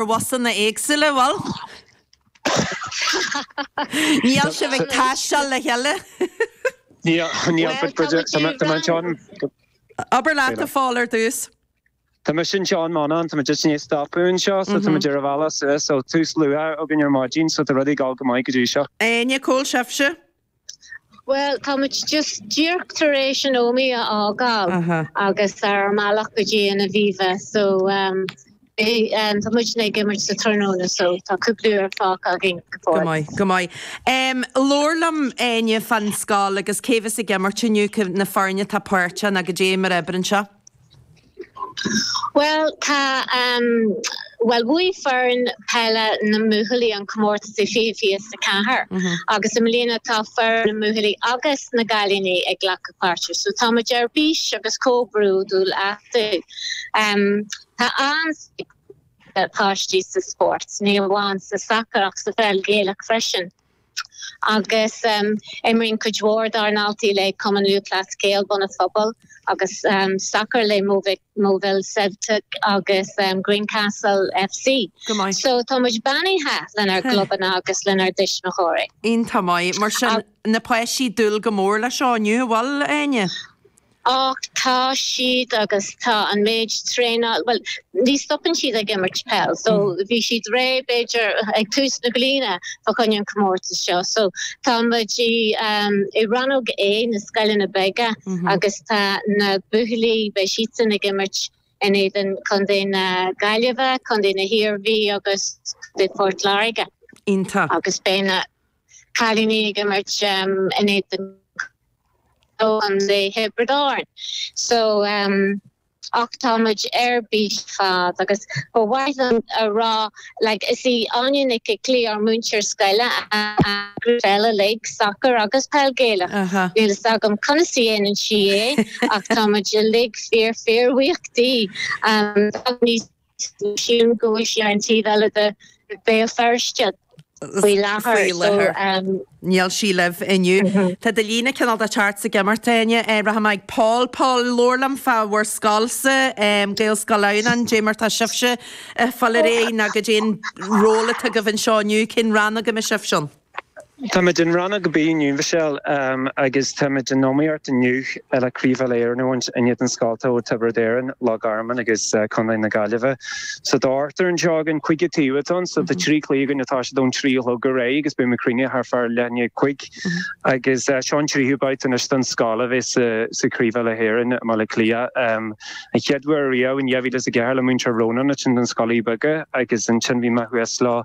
Ar bhusanna éagsúla, bhuel. Níl sibh ag taisteal le chéile? Níl, but tá muid ag dul. Abair leat, a Phól, ar dtús. Tá mise anseo in Monaghan, tá muid just i ndiaidh stopadh anseo, so tá muid ar an bhealach suas, so tús luath againn ar maidin, so tá rudaí ag dul go maith go dtí seo. Áine, cá bhfuil sibhse? Bhuel, tá muid just díreach tar éis an Ómaigh a fhágáil agus ar an mbealach go dtí an Aviva so tá muidne ag imirt sa tráthnóna so tá cúpla uair fágtha againn go fóill. Go maith, go maith. Labhair liom, Áine, fán scoil agus cé bheas ag imirt inniu, na foirne atá páirteach nó caidé mar a oibríonn seo? Bhuel, tá, bhuel, bhuaigh foireann peile na mbuachaillí an comórtas i fiche fiche is a ceathair agus i mbliana tá foireann na mbuachaillí agus na gcailíní ag glacadh páirte, so tá muid ar bís agus chomh bródúil astu. Tá an-spéis ag na páistí sa spórt, ní amháin sa sacar ach sa pheil Ghaelach freisin. agus imríonn cuid mhór dár ndaltaí le Cumann Lúthchleas Gael, Bun an Phobail agus sacar le Moville Celtic agus Greencastle FC. So tá muid beannaithe lenár gclubanna agus lenár dtuismitheoirí. Iontach maith. Mar sin, na páistí ag dúil go mór leis seo inniu, an bhfuil, Áine? Ach tá siad agus tá an méid traenáil, bhuel, ní stopann siad ag imirt peil, so bhí siad réidh b'fhéidir ag tús na bliana fá choinne an chomórtas seo. So tá muid i rannóg A na scoileanna beaga agus tá na buachaillí, beidh siadsan ag imirt in éadan contae na Gaillimhe, contae na hIarmhí agus contae Phort Láirge. Iontach. Agus beidh na. cailíní ag imirt in éadan chontae Thiobraid Árann. So ach tá muid ar bís ar fad agus ba mhaith liom a rá like is í Áine Nic Iclí ár múinteoir scoile a grúpa peile uilig, sacar agus peil Gaelach. Níl fhios agam conas a dhéanann sí é ach tá muid uilig fíor fíor bhuíoch di. Tá muid níos Sílim go bhfuil sí ar an taobh eile de Béal Feirste faoi láthair. Níl sí libh inniu. Tá do líne cineál ag teacht is ag imeacht, Áine, rachaidh mé ag Paul. Paul, labhair liom fá bhur scoilse, Gaelscoil Adhamhnáin, caidé mar tá sibhse ag fáil réidh nó caidé an ról atá agaibh anseo inniu, cén rannóg a mbeidh sibhse ann? Táimid in Rannóg B inniu, Mhichelle, agus táimid in iomaíocht inniu le Craobh Uile-Éireann a bhaint in éadan scoilte ó Tiobraid Árann, Loch Garman agus Contae na Gaillimhe. So tá ochtar anseo againn, cúig an taobh atá ann, so tá trí cluiche againn atá siad ón trí a chlog ar aghaidh agus beidh muid críochnaithe thart fá leath i ndiaidh a cúig. Agus seo an tríú babhta anois don scoil a bheith sa Craobh Uile-Éireann i mBaile Átha Cliath. An chéad uair riamh in 2004 le Múinteoir Rónán ansin do na scoilte beaga agus ansin bhí mé thuas leo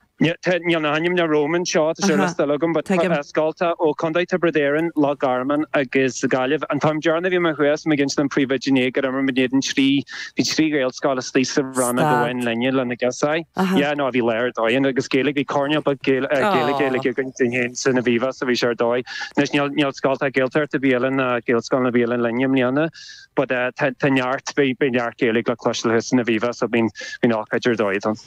Níl na hainmneacha romham anseo, tá sé ar liosta eile agam, but scoilte ó Chontae Tiobraid Árann, Loch Garman agus Gaillimh. An t-am deireanach a bhí mé thuas, mé ag insint don phríomhoide inné gur imir muid in éadan trí, bhí trí Ghaelscoil istigh sa roinn amháin linne lena gcás. Yeah, no, bhí lá ar dóigh ann agus Gaeilge, bhí coirnéal beag Gaeilge againn dúinn féin san Aviva so bhí sé ar dóigh. Anois níl scoilte Gaeltachta ar bith eile ná Gaelscoileanna ar bith eile linn i mbliana. but tá neart, beidh neart Gaeilge le cloisteáil thuas san Aviva, so bíonn ócáid ar dóigh ann.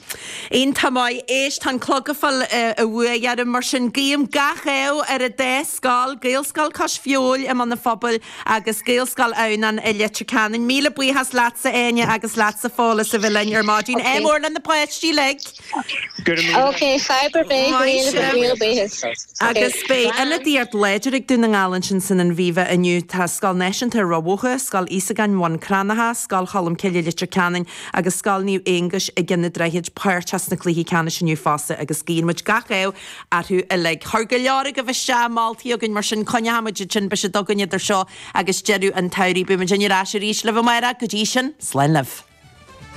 Iontach maith. Éist, tá an clog ag fáil an bhua orm, mar sin guím gach ádh ar an dá scoil, Gaelscoil Cois Feabhail i mBun an Phobail agus Gaelscoil Adhamhnáin i Leitir Ceanainn. Míle buíochas leatsa Áine agus leatsa Phól as a bheith linn ar maidin. Ádh mór le na páistí uilig. Ok, fadhb ar bith, Gaeilge Mhaise. Míle buíochas. Ok, Agus beidh ionadaíocht láidir ag Dún na nGall ansin san Aviva inniu. Tá Scoil Náisiúnta Ráth Bhoth, Scoil Íosagáin Bhun Cranncha, Scoil Cholmcille Leitir Ceanainn agus Scoil Naomh Aonghais i gCeann an Droichid páirteach sna cluichí ceannais inniu fosta agus guíonn muid gach ádh orthu uilig. Chuir go leor agaibh isteach moltaí chugainn mar sin coinneoidh muid iad sin beidh siad againn idir seo agus deireadh an tsamhraidh. Beidh muidinne ar ais arís libh amárach. Go dtí sin, slán libh.